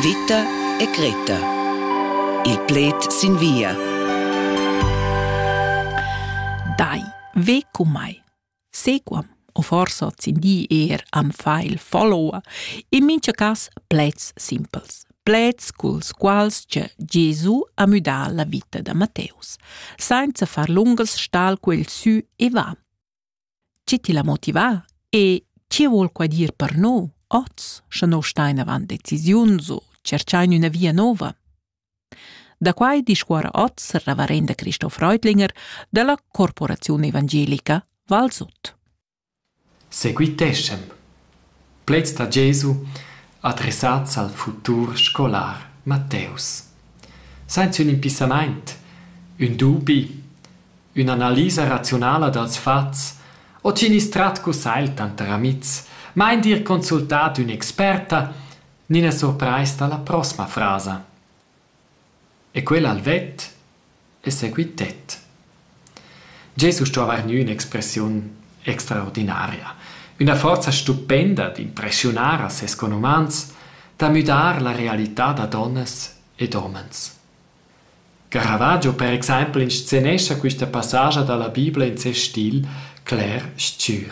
Vita e cretta. Il pled sin via. Dai, ve cu mai. Sequam, o forsa sin di er am fa il follower, in mincha cas pleds simpels. Pleds culs quals che Gesù ha müdà la vita da Matteus, sainza far lungas stal quel sü e va. Chi ti l'ha motivà e chi vuol qua dir per noi oz, scha no stain avant decisiuns u tscherchain üna via nouva? Da quai discuorra oz il reverenda Cristo Freudlinger da la Corporaziun Evangelica Valsot. Seguiteschem Pleds da Jesu adressats al futur scolar Matteus. Sainz ün impissamaint, ün dubi, ün'analisa raziunala dals fats o chi gnüss trat cun sai tanter amihs, ma eir d'ir consultà d'ün'experta, gnina surprais da la prossma frasa. E quel ha el vett e seguitet. Gest uss sto haver gnü ün'expressiun extraordinaria, üna forza stupenda d'impreschiunar a ses conumans, da müdar la realità da donnas ed homens. Caravaggio per exaimpel inscenescha quista passaggia da la Bibla in ses stil cler stgür.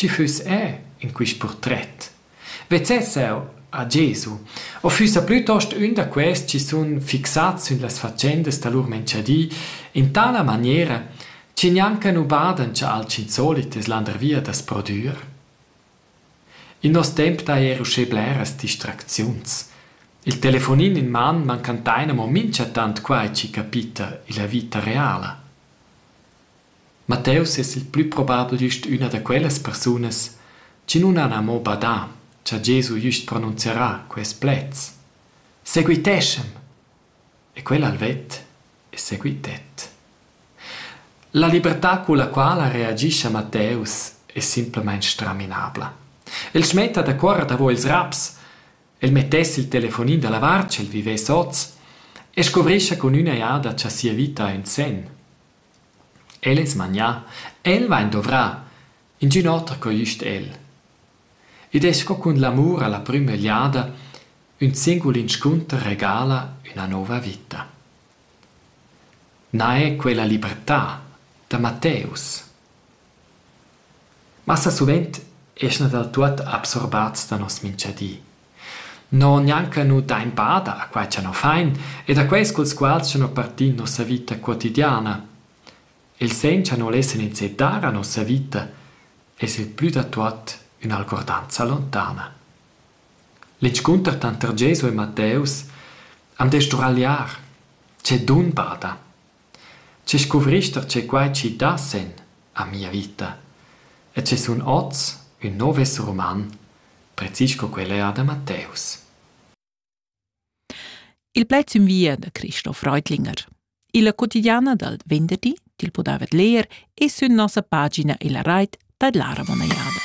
Tgi füss eu in quist purtret? Vezzess eu a Gesu u füssa plütost ün da quels chi sun fixats sün las fatschendas da lur menchadi in tala maniera chi gnanca nu badan cha alchün solit es landervia da's prodüer? In nos temp d'he eir uschè bleras distracziuns. Il telefonin in man mancantain amo minchatant quai chi capita illa vita reala. Matteus es il plü probabel güst üna da quellas persunas chi nun han amo badà cha Gesu güst pronunzierà quaists pleds: «Seguiteschem!» E quel ha'l vet e seguitet. La libertà culla quala reagischa Matteus es simplamaing straminabla. El smetta da cuorrer davo ils raps, el mettess il telefonin da lavar ch'el vivess hoz e scuvrischa cun üna jada cha sia vita ha ün sen. El es magnà e el vain dovrà, ingün oter co güst el. Id es sco cun l'amur a la prüma egliada, ün singul inscunter regala üna nouva vita. Na è quella libertà da Matteus? Massa suvent eschna dal tuot absorbats da nos minchadi. No gnanca nu dain bada a quai cha no fain ed a quels culs quals cha no partin nossa vita quotidiana. Il sen cha no lessan inseddar a nossa vita es il plü da tuot ün'algordanza lontana. L'inscunter tanter Gesu e Matteus am dess sdruagliar. Che dun bada! Tge scuvrist er tge quai chi dasen a mia vita e tge sun oz ün nouv esser uman, precis sco quel eir da Matteus. Il pled sün via da Christoph Reutlinger. Illa quotidiana dal venderdi til podaivat leer e sün nossa pagina illa rait da Lara Monejada.